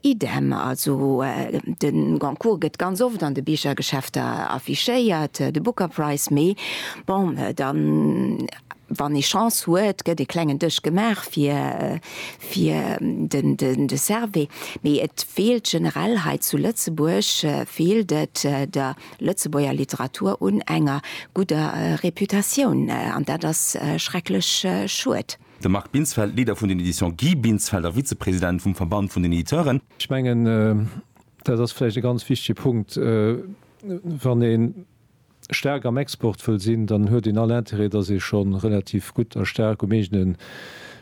Idem, also de Goncourt gëtt ganz oft an de Bichergeschäfter affichéiert, de Booker Prize, mee bon, da wann ee Chance huet, gëtt ee klengen Dësch gemaach fir de Servais. Mee et feelt generell hei zu Lëtzebuerg, feelt et der Lëtzebuerger Literatur un enger gudder Reputatioun, an dat ass schrecklech schued. De Marc Binsfeld, Leader vun den Editions Guy Binsfeld a Vizepresident vum Verband vun den Editeuren. Ech mengen, dat ass vläicht e ganz wichtege Punkt, wann ee staark am Export wëll sinn, dann huet een all Interêt, dass ee scho relativ gutt a staark um eegene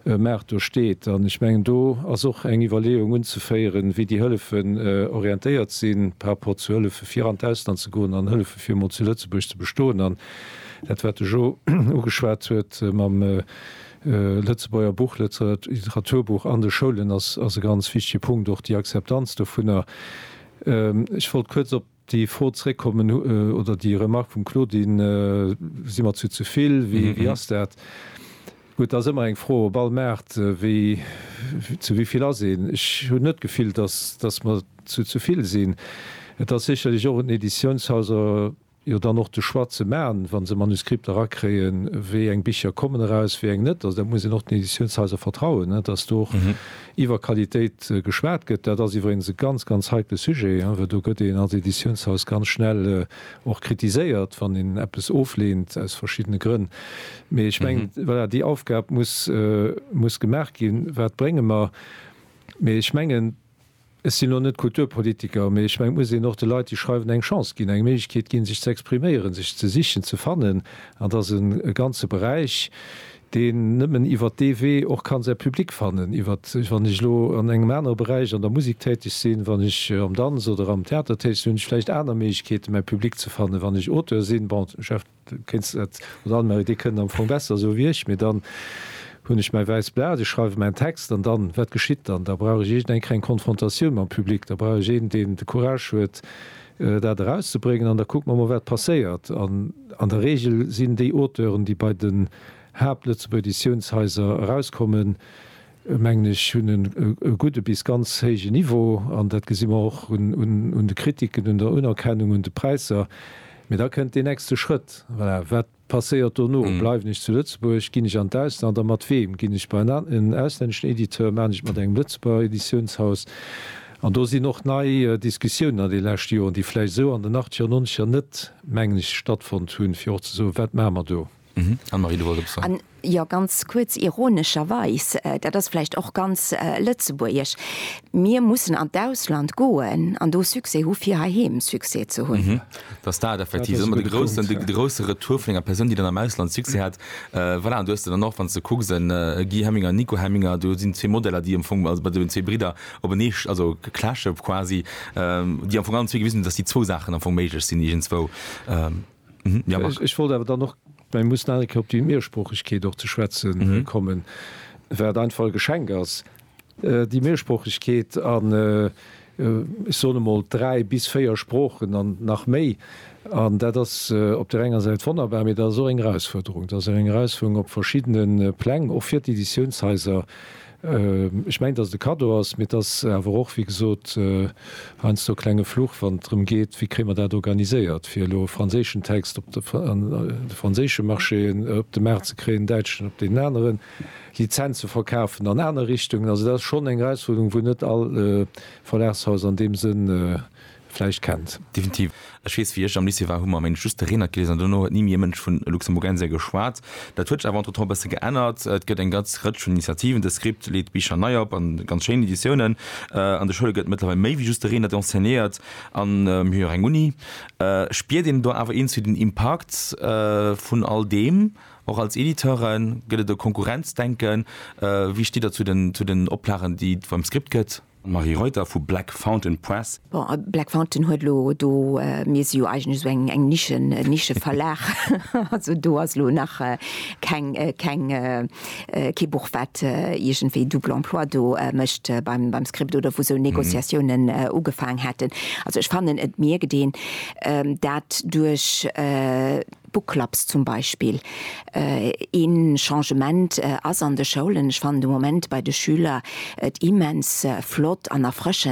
Maart do steet. An ech mengen, do ass och eng Iwwerleeung unzeféieren, wéi déi Hëllefen orientéiert sinn, par rapport zu Hëllefe fir an d'Ausland ze goen an Hëllefe fir emol zu Lëtzebuerg ze bestoen. Dat, wat de Jo ugeschwat huet mam Lëtzebuerger Buch, Literaturbuch an de Schoulen, ass e ganz wichtege Punkt, och déi Akzeptanz dovunner. Ech wollt kuerz op déi Fro zréckkommen oder déi Remark vum Claudine, Si mer zu ze vill? Wéi ass dat? Gutt, dat ass ëmmer eng Fro op all Maart, zu wéi vill ass een? Ech hunn net d'Gefill, datt mer zu ze vill sinn. Et ass sécherlech och un den Editiounshaiser jo dann och de Choix ze man, wa se Manuscripter erakréien, wéi eng Bicher kommen eraus, wéi eng net. Also dat muss een och den Editiounshaiser vertrauen, datt do och iwwer Qualitéit geschwat gëtt. Dat ass iwweregens e ganz, ganz heikle Sujet, well do gëtt een als Editiounshaus ganz schnell och kritiséiert, wann een eppes ofleent aus verschiddene Grënn. Mee ech mengen, voilà, déi Aufgab muss, muss gemaach ginn, wat brénge mer. Mee ech mengen. Ech sinn elo net Kulturpolitiker, mee ech mengen, et muss een och de Leit, déi schreiwen, eng Chance ginn, eng Méiglechkeet ginn, sech ze expriméieren, sech ze sichen, ze fannen. An dat ass e ganze Beräich, deen nëmmen iwwer dee Wee och ka säi Public fannen. Iwwert, wann ech elo an engem anere Beräich an der Musek täteg sinn, wann ech am Danz oder am Theater täteg sinn, hunn ech vläicht aner Méiglechkeeten, mäi Public ze fannen. Wann ech Auteur sinn, bon, Kéinst net, oder Anne-Marie, dee kënnt am Fong besser esou wéi ech, mee dann hunn ech mäi wäisst Blat, ech schreiwe mäin Text an dann, wat geschitt dann? Da brauch ech iergendeng Kéier eng Konfrontatioun mam Public, da brauch ech een, deen de Courage huet, dat erauszebréngen an da kucke mer mol, wat passéiert. An an der Reegel sinn déi Auteuren, déi bei den Haapt-Lëtzebuerger Editiounshaiser erauskommen, mengen ech, hunn en e gudde bis ganz héije Niveau, an dat gesi mer och un de Kritiken, un der Unerkennung, un de Präisser. Mee da kënnt deen nächste Schrëtt, voilà, wat passéiert dono? Bleiwen ech zu Lëtzebuerg, ginn ech an d'Ausland a mat weem? Ginn ech bei en auslänneschen Editeur, maachen ech et mat engem Lëtzebuerger Editiounshaus? An do sinn och nei Diskussiounen an de leschte Joren, déi vläicht esou an den Achtziger, Nonzeger net, mengen ech, stattfonnt hunn, fir och ze soen, wat maache mer do? Anne-Marie, du wolls eppes soen? Jo, ganz kuerz. Ironescherweis, dat ass vläicht och ganz lëtzebuergesch, mir mussen an d'Ausland goen an do Succès hu fir heiheem Succès ze hunn. Dat ass dat effektiv, ëmmer de groussen, de grousse Retour vun enger Persoun, déi dann am Ausland Succès hat. Voilà, an du hues de dann och, wann s de kucks, e Guy Hemminger, e Nico Hemminger, do sinn zwee Modeller, déi am Fong, also bei deenen zwee Bridder openee, also clashe quasi, déi am Fong allen zwee gewisen hunn, datt déi zwou Saachen am Fong méiglech sinn iergendzwou. Ech wollt awer dann och, mä mir mussen nach eng Kéier op déi Mehrsproochegkeet och ze schwätze kommen, wat einfach e Geschenk ass, déi Mehrsproochegkeet an, ech soen emol, dräi bis véier Sproochen an nach méi. An dat ass op där enger Säit wonnerbar, mä dat ass och eng Erausfuerderung. Dat ass eng Erausfuerderung op verschiddene Pläng, och fir d'Editiounshaiser, Ech mengen, dass et e Kaddo ass, mee et ass awer och, wéi gesot, heiansdo e klenge Fluch, wann et drëm geet, wéi kréie mer dat organiséiert, fir elo e franséischen Text op de franséische Marché, op de Maart ze kréien, en däitschen op deen aneren, Lizenz ze verkafen an aner Richtungen. Also dat ass schonn eng Erausfuerderung, wou net all Verlagshaus an deem Sënn vläicht kennt. Definitiv. Ech weess, wéi ech am Lycée war, hu mer am Englescht just de Renert geliesen an duerno huet ni méi e Mënsch vun Luxemburgensia geschwat. Dat huet sech awer entretemps e bësse geännert. Et gëtt eng ganz Rëtsch vun Initiativen. De Script leet Bicher nei op an ganz schéin Editiounen. An de Schoule gëtt mëttlerweil méi wéi just de Renert enseignéiert an mir hu jo och eng Uni. Spiert een do awer iergendwéi den Impakt vun all deem? Och als Editeuren, gëtt et e Konkurrenzdenken? Wéi steet Der zu den Oplagen, déi et beim Script gëtt? Marie Reuter vu Black Fountain Press. Bon, Black Fountain huet elo do, mir si jo eigentlech esou eng Nische, e Nischeverlag, also do ass elo nach keng, keng, kee Buch wat iergendwéi double emploi do mécht beim, beim Script oder wou esou Négociatiounen ugefaang hätten. Also ech fannen et mierkt een dat duerch, Book Clubs zum Beispill. Ee Changement ass an de Schoulen, ech fannen de Moment bei de Schüler et immens flott an erfrëschend,